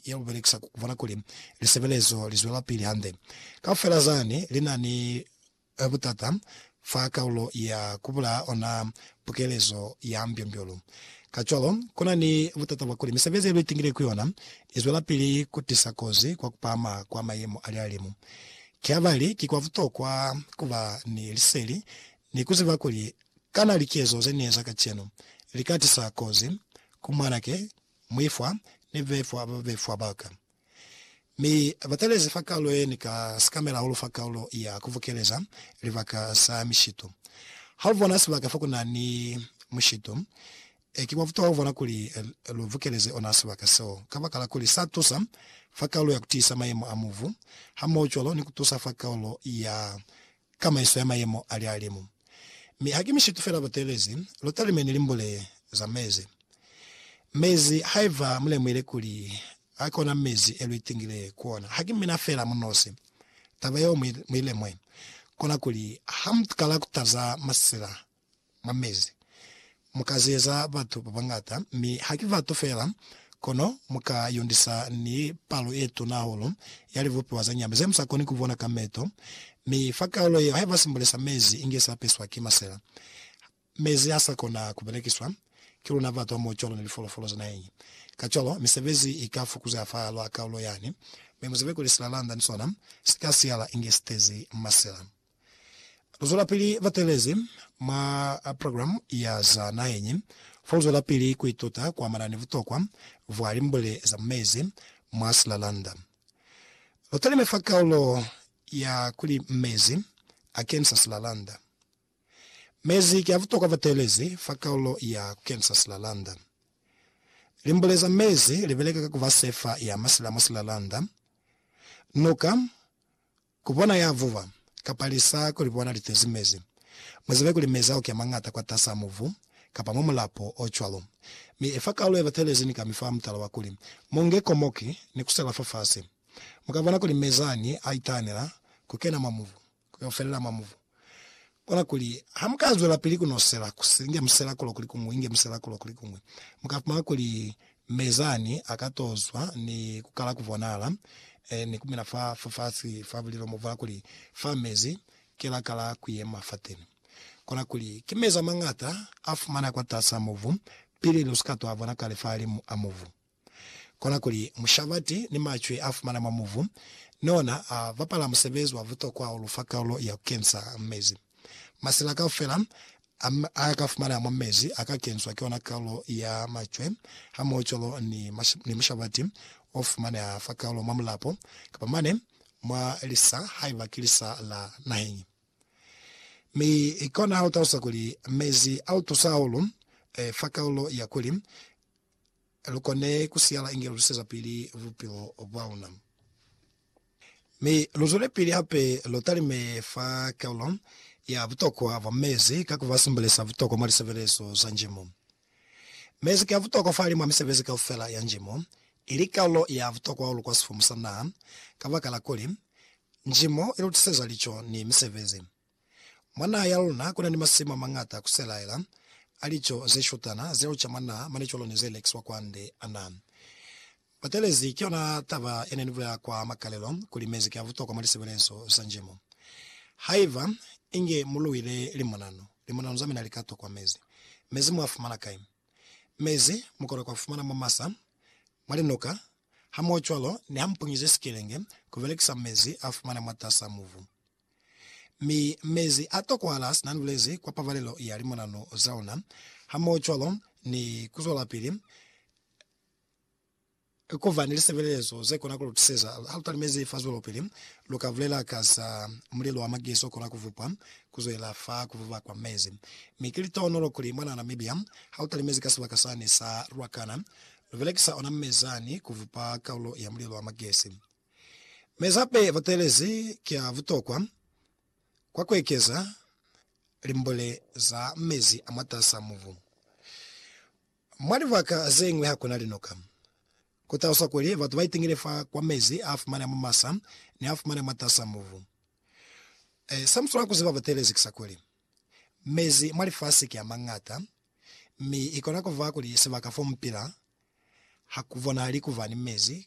ya bu belekisa ku bona kuli lisebelezo li zwelapili hande. Kaufela zani li na ni butata fa kaulo ya ku bulaya ona pukelezo ya mbyombyoulu. Kacwalo, ku na ni butata bwa kuli misebezi ye lu itingile ku yona i zwelapili ku tisa kozi kwa ku pahama kwa mayemo a lihalimu. Kihabali ki kwa butokwa ku ba ni liseli ni ku ziba kuli kana likezo ze ni eza kacenu li ka tisa kozi ku mwanake Muifwa ni befwa ba befwa ba ka. Mi ba talezi fa kaulo ye ni ka sikamela hahulu fa kaulo ya ku bukeleza libaka sa mishito. Ha u bona sibaka fa ku na ni mushito, ki mwa butuha ku bona kuli lu bukeleze ona sibaka seo, kabakala kuli sa tusa fa kaulo ya ku tiisa mayemo a mubu, hamohocwalo ni ku tusa fa kaulo ya ka maiso ya mayemo a lihalimu. Mi haki mishitu fela ba telezi, lu talime ni limbule za mezi. Mezi, haiba mu lemuhile kuli a ki ona mezi e lu itingile ku ona, haki mina fela mu nosi. Taba yeo mu i lemwe, kona kuli ha mu kala ku taza masila mwa mezi. Mu ka zeza batu ba bañata, mi ha ki batu fela, kono mu ka yundisa ni palo ye tuna hahulu ya libupiwa za nyama ze mu sa koni ku bona ka meto. Mi fa kaulo yeo, haiba simbule sa mezi inge sa peswa ki masela, mezi ha sa kona ku belekiswa ki luna batu hamoho cwalo ni lifolofolo za naheñi. Kacwalo, misebezi i ka fukuzeha fa lwa kaulo yani, mi mu zibe kuli silalanda ni sona si ka siyala inge si tezi masela. Luzwelapili batelezi mwa programu ya za naheñi foluzwelapili kuituta kuamana ni butokwa bwa limbwele za mu mezi mwa silalanda. Lutalime fa kaulo ya kuli Mezi Akenisa Silalanda. Mezi ki a butokwa batelezi fa kaulo ya Kukenisa Silalanda. Limbwele za mezi libeleka ka kuba sefa ya masila mwa silalanda, nuka, Ku bona ya vuba, kapa lisa ku li bona li tezi mezi. Mu zibe kuli mezi a oki a mañata kwatas'a mubu, kapa mwa mulapo o cwalo. Mi efa kaulu ye batelezi ni ka mi fa mutala wa kuli, Mu nge komoki, ni ku sela fafasi. Mu ka bona kuli mezi ani a itahanela ku kena mwa mubu, ku yo felela mwa mubu. Kona kuli, ha mu ka zwelapili ku no sela, ku inge mu sela kulo kuli kuñwi, inge mu sela kulo kuli kuñwi, mu ka fumana kuli Mezani a ka to zwa ni ku kala ku bonala, eh, ni ku mina fa, fa fasi fa bulilo mo fa kuli, Fa mezi, Ki la kala ku yema fateni. Kona kuli, ki mezi a mañata a fumana kwatas'a mubu, pili lu si ka to a bona kale fahalimu a mubu. Kona kuli mushabati ni macwi a fumana mwa muvu ni ona a bapala musebezi wa butokwa o lu fa kaulo ya ku kensa mezi. Masila kaufela a a ka fumana mwa mezi a ka kenswa ki ona kaulo ya macwe hamohocwalo ni ni mushabati o fumaneha fa kaulo mwa mulapo kapa mane mwa lisa haiba ki lisa la naheñi. Mi kona ha u talusa kuli mezi a lu tusa hahulu fa kaulo ya kuli lu kone ku siyala inge lu lwisezapili bupilo bwa luna. Mi lu zwelepili hape lu talime fa kalo ya butokwa bwa mezi ka ku ba simbulisa butokwa mwa lisebelezo za njimo. Mezi ki a butokwa fahali mwa misebezi kaufela ya njimo, ili kalo ya butokwa hahulu kwa sifumu sa naha, kabakala kuli, njimo i lu tiseza lico ni misebezi. Mwa naha ya luna kuna ni masimu amañata kuselaela a lico zeshutana zeo ca mwa naha mane cwalo ni ze lekiswa kwande. Ana batelezi ki yona taba yene ni bulela kwa makalelo kuli mezi ki a butokwa mwa lisebelezo za njimo. Haiba inge mu luile limonano, limonano za mina li ka tokwa mezi. Mezi mu a fumana kai? Mezi mu kona ku a fumana mwa masa, mwa linuka, hamohocwalo ni ha mu punyize sikelenge ku belekisa mezi a fumana mwatas'a mubu. Mi mezi a tokohala sina nulezi kwa pabalelo ya limonanu za ona, hamohocwalo ni kuzwelapili kuba ni lisebelezo zekona kulutuseza halutalimezi fa zwelopili. Luka bulela ka za mulelo wa magezi okona kuvupwa kuzwelela fa kuvuba kwa mezi. Mi ki litohonolo kuli mwana Namibia halutalimezi ka sibaka sani sa Ruacana, lubelekisa ona mezani kuvupa kaulo ya mulelo wa magezi. Mezape ya butelezi ki ya butokwa kwa ku ekeza limbule za mezi a mwatas'a mubu. Mwa libaka ze ñwi ha ku na linoka. Ku taluswa kuli batu ba itingile fa kwa mezi a fumaneha mwa masa ni a fumaneha mwatas'a mubu. Sa mu swanela ku ziba butelezi ki sa kuli, mezi mwa lifasi ki a mañata, mi i kona ku ba kuli sibaka fo mu pila ha ku bonahali ku ba ni mezi